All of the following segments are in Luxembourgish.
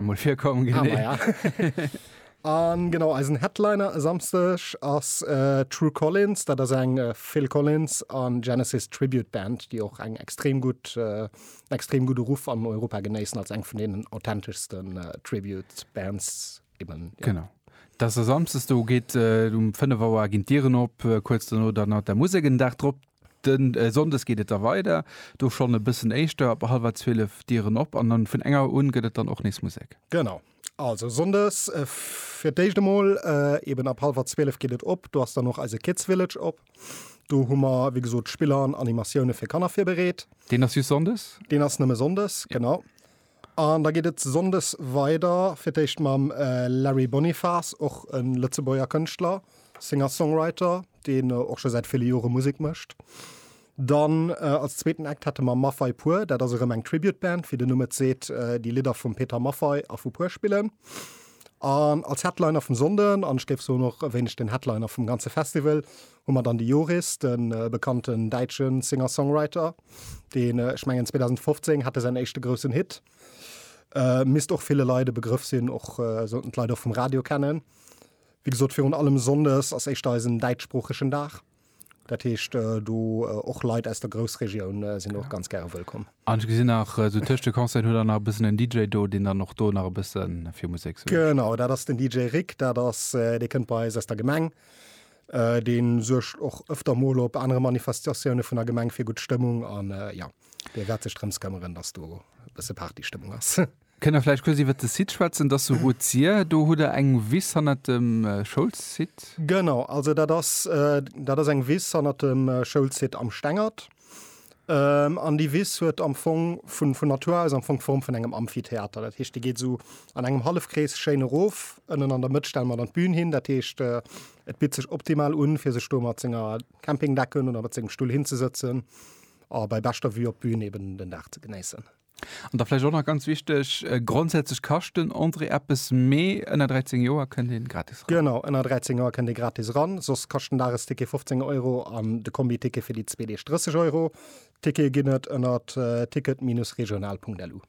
mol virkommen gin. Ah, ja. An genau eisen Headliner e Samsteg ass äh, True Collins, dat ass eng äh, Phil Collins an Genesis Tribute Band, déi och eng extrem gut äh, extrem gute Ruff an Europa genéissen als eng vun den authentischsten äh, Tribute Bands eben. Ja. Genau. Das ass samstes do geet äh, um 5 Auer ginn d'Dieren op, äh, kuerz duerno dann hat der Musek en Dag drop. De Sonndes geet et da weider, do schonn e bëssen éischter, ab hallwer zwielef Dieren op an dann vun eng Auer un gëtt et dann och nees Musek. Genau. Also Sonndes fir d'éischt emol eben ab hallwer zwielef geet et op, do ass dann och eise Kids Village op. Do hu mer wéi gesot Spiller an Animatioune fir Kanner virbereet. Deen ass just Sonndes? Deen ass nëmme Sonndes, genau. An da geet et Sonndes weider fir d'éischt mam Larry Bonifas, och e Lëtzebuerger Kënschtler, Singer-Songwriter, deen och scho säit ville Jore Musek mécht. Dann als zweeten Act hätte mer Maffay Pur, dat ass erëm eng Tribute-Band, wéi den Numm et seet, déi Lidder vum Peter Maffay a vu Pur spillen. An als Headliner vum Sonnden, an ech géif soen och e wéineg den Headliner vum ganze Festival, Hu mer dann de Joris, de bekannten däitsche Singer-Songwriter, deen, ech mengen 2015 hat e säin éischte groussen Hit, misst och ville Leit e Begrëff sinn, och sollten d'Leit och vum Radio kennen. Wéi gesot, virun allem sonndes ass éischter eisen däitschsproochegen Dag. Dat heescht, do och Leit aus der Groussregioun sinn och ganz gäre wëllkomm. An ech gesinn nach, esou tëscht de Concerten hutt der nach e bëssen en DJ do, deen dann och do nach e bësse fir Musek suergt. Genau, dat ass den DJ Rick. Dat ass, dee kënnt bei eis aus der Gemeng. Deen suergt och öfter mol op anere Manifestatiounen vun der Gemeng fir gutt Stëmmung an jo, dee wäert sech drëms këmmeren, dass do e bësse Partystëmmung ass. Kënnt der vläicht kuerz iwwert de Site schwätzen, dass se wou zier? Do hutt der eng Wiss hannert dem Schoulsite. Genau, also dat ass, dat ass eng Wiss hannert dem Schoulsite am Stengert. An déi Wiss huet am Fong vun vun Natur aus am Fong d'Form vun engem Amphitheater. Dat heescht, déi geet esou an engem Hallefkrees schéin erof. Ënnen an der Mëtt stelle mer dann d'Bün hin. Dat heescht, et bitt sech optimal un, fir sech do mat senger Campingdecken oder mat sengem Stull hinzesëtzen a bei beschter Vue op d'Bün eeben den Dag ze genéissen. An da vläicht och nach ganz wichteg, grondsätzlech kascht den Entrée eppes, mee ënner 13 Joer kënnt ee gratis ran. Genau, ënner 13 Joer kënnt ee gratis ran, soss kascht den Dagesticket 15 Euro an de Kombiticket fir déi zwee Deeg 30 Euro. Tickete ginn et ënner ticket-régional.lu.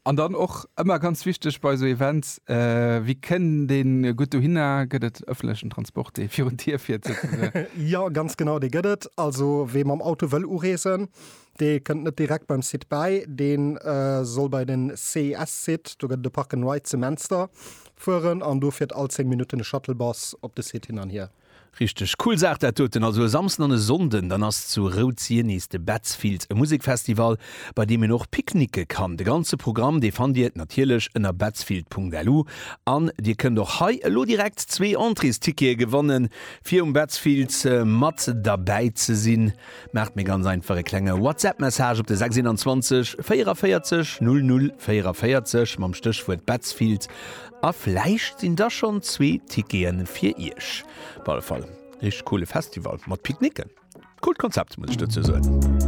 An dann och ëmmer ganz wichteg bei esou Events, Wie kënnt ee gutt dohinner? Gëtt et ëffentlechen Transport, dee virun d'Dier fiert souzesoen? Jo, ganz genau, dee gëtt et. Also wee mam Auto wëll ureesen, Dee kënnt net direkt beim Site bäi, dee soll bei den CIS-Site, do gëtt et e Park and Ride zu Menster, fueren an do fiert all 10 Minutten e Shuttlebus op de Site hin an hier. Richteg cool Saach dat doten. Also e Samsden an e Sonnden, dann ass zu Routz-Sienise de Betzfiels, e Musekfestival bei deem een och picknicke kann. De ganze Programm dee fannt Dir natierlech ënner betzfield.lu an Dir kënnt och hei elo direkt zwee Entréestickete gewannen fir um Betzfiels mat derbäi ze sinn. Maacht mir ganz einfach e klenge WhatsApp-Message op de 621 44 00 44 mam Stéchwuert Betzfield a vläicht sinn da schonn zwee Tickete fir Iech. Op alle Fall, richteg coole Festival mat Picknicken. Coolt Konzept, muss ech dozou soen.